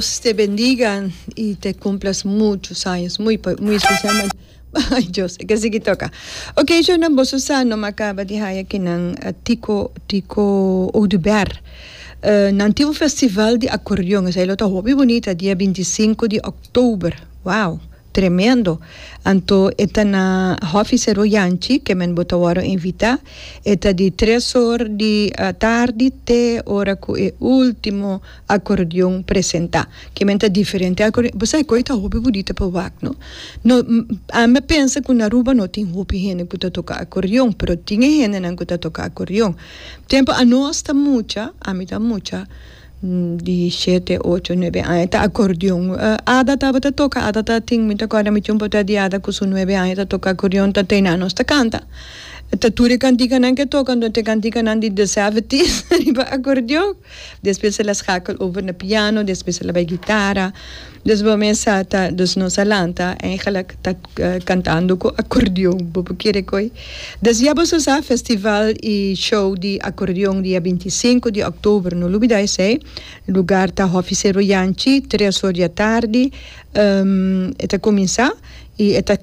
Dios te bendiga y te cumplas muchos años muy muy especialmente ay Dios e ke sigui toka ok shownan boso sa no ma caba di haya kinan tico tico oduber uh nan tin un festival di acordeon esai lo ta hopi bonita dia binti sinku di october wow. Tremendo! Anto e ta na Hòfi Sero Yanchi, ke men bo ta wòrdu invitá. E ta di tres or di tardi te ora ku e último akordeon presentá. Ke men ta diferente akordeon. Bo sabe koe ta hopi budita pa wak, no? No, ami a pensa ku na Aruba no tin hopi hende ku ta toka akordeon, pero tin e hendenan ku ta toka akordeon. Tempu anos ta mucha, ami ta mucha. di shete, ocho, nuebe aña ta acordeon. Ada tabata toca, Ada ta tin, mi ta acorda mi tiempo ta di Ada cu su nuebe aña ta toca acordeon ta tey nan nos ta canta. Ta tur e cantikanan ke toca anto te cantikanan di The Seventies riba acordeon. Despues ela schakel over na piano, despues ela bay guitara. Dos bo mesa ta dos nos a lanta en gelijk ta cantando cu acordeon bo por kere coi des ya bo sa sa festival y show di acordeon dia binti i sinku di october no lubida esey lugar ta hofi sero yanchi tres or dia tardi e ta cuminsa y e ta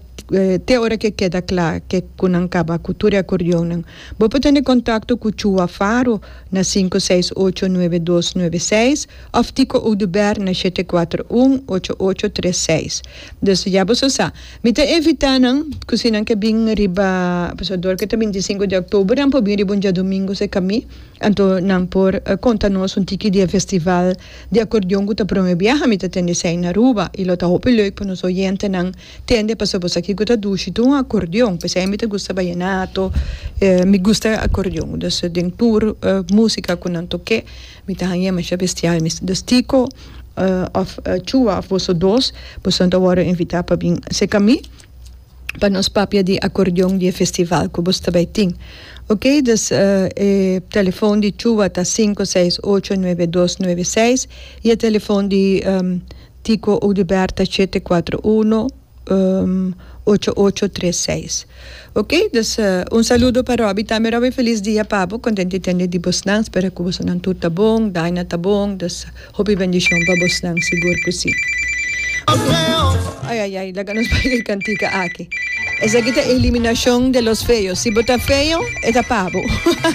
te ora ke keda cla ke cu nan caba cu tur e acordeon nan bo por tene contacto cu Chua Faro na sinku seis ocho nueve dos nueve seis. Of ti ku Oduber na shete kuater un ocho ocho tres seis. Desde ya boso sa. Mi ta evitá nan ku si nan ke bin riba Abusador ke ta bintisinku di oktober nan por bin riba un diadumingu sekamí anto nan por konta nos un tiki di e festival di akordeon ku ta prome biaha mi ta tende esei na Aruba i lo ta hopi leuk pa nos oyentenan tende pasobra bo sa ki ku ta dushi tur un akordeon p'esei mi ta gusta bayenato mi gusta akordeon dus den tur musika ku nan tok'é. Mi ta hañ'é masha bestial mi ta stiko òf chua òf boso dos bosonan ta wòrdu invitá pa bin seka mi pa nos papia di akordeon di e festival ku boso ta bai tin ok dus e telefon di chua ta sinku seis ocho nuebe dos nuebe seis i e telefon di tiko ou di bèrt ta shete kuatro uno ocho ocho tres seis ok dus un saludo pa Robby tambe Robby feliz dia pa bo contenti tende di bosnan spera cu bosonan tur ta bon Daina ta bon dus hopi bendicion pa bosnan sigur cu si ayayay laga nos bay e cantica aki esaki ta eliminacion de los feos si bo ta feo e ta pa bo.